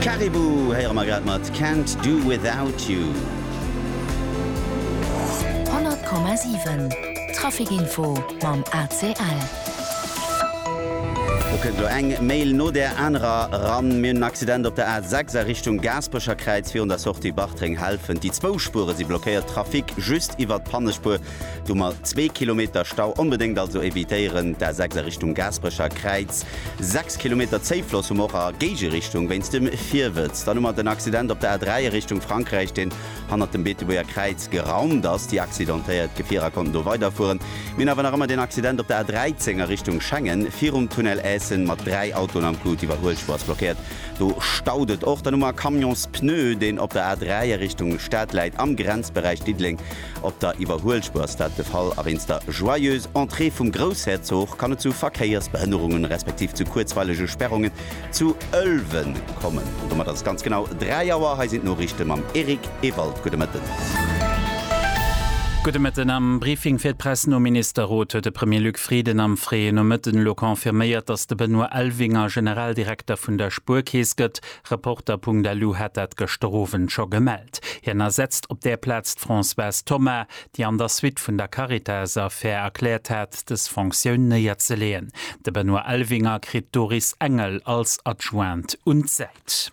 Caribou héiere mer grad mat Can't Do Without You. 100,7 Traficinfo mam ACL. Do kënnt elo eng Mail no där anerer eran. Mir hunn en Accident op der A6 a Richtung Gaasperecher Kräiz. Virun der Sortie Bartreng-Helfent déi zwou Spuere si blockéiert. Trafic just iwwert d'Pannespuer Do mer zwee Kilometer Stau, onbedéngt also evitéieren d'A6 a Richtung Gaasperecher Kräiz. Sechs Kilometer Zéifloss hu mer och a Géigerichtung wéinst dem Virwëtz. Dann hu mer den Accident op der A3 a Richtung Frankräich, deen hannert dem Beetebuerger Kräiz geraumt ass. Déi accidentéiert Gefierer konnten do weiderfueren. Mir hunn awer nach ëmmer den Accident op der A13 a Richtung Schengen, virum Tunnel Essen, mat dräi Autoen am Coup. D'Iwwerhuelspur ass blockéiert, do staut et och. Dann hu mer e Camions Pneu, deen op der A3 a Richtung Stad läit, am Grenzberäich Diddeleng Op der Iwwerhuelspur ass dat de Fall a wéinst der Joyeuse Entrée vum Groussherzog kann et zu Verkéiersbehënnerungen, respektiv zu kuerzweilege Spärrungen zu Ëlwen kommen. An domat ass et ganz genau 3 Auer. Hei sinn d'Noriichte mam Eric Ewald. Gudde Mëtten. Gudde Mëtten. Am Briefing fir d'Press nom Ministerrot huet de Premier Luc Frieden am fréien Nomëtten elo confirméiert, datt de Benoît Elvinger Generaldirekter vun der Spuerkeess gëtt. Reporter.lu hat dat gëschter Owend scho gemellt. Hien ersetzt op där Plaz d'Françoise Thoma, déi an der Suite vun der Caritas-Affär erkläert hat, dës Fonctioun néierzeleeën. De Benoît Elvinger kritt d'Doris Engel als Adjoint un d'Säit.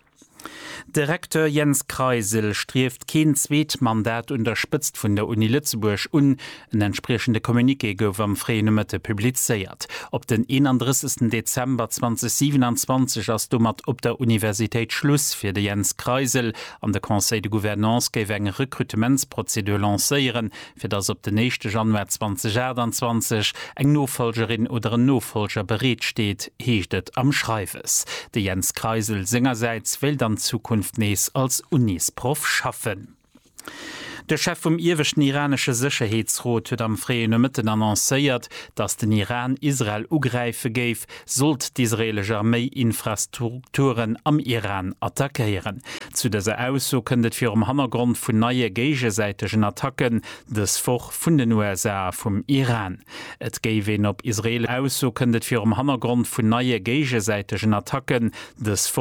De Recteur Jens Kreisel strieft keen zweet Mandat un der Spëtzt vun der Uni Lëtzebuerg un. En entspriechende Communiqué gouf am fréie Nomëtte publizéiert. Op den 31 Dezember 2027 ass domat op der Universitéit Schluss fir de Jens Kreisel an de Conseil de Gouvernance géif eng Rekrutementsprozedur lancéieren, fir datt op den éischte Januar 2028 eng Nofolgerin oder en Nofolger bereet steet, heescht et am Schreiwes. De Jens Kreisel sengersäits wéilt an Zukunft nees als Unisproff schaffen. De Chef vum ieweschten iranesche Sécherheetsrot huet am fréie Nomëtten annoncéiert, datt den Iran Israel ugräife géif, sollt d'israeelesch Arméi Infrastrukturen am Iran attackéieren. Zu dëser Ausso kënnt et virum Hannergrond vun neie géigesäitegen Attacken dës Woch vun den USA a vum Iran. Et géif een op israeelesch Ausso kënnt et virum Hannergrond vun neie géigesäitegen Attacken dës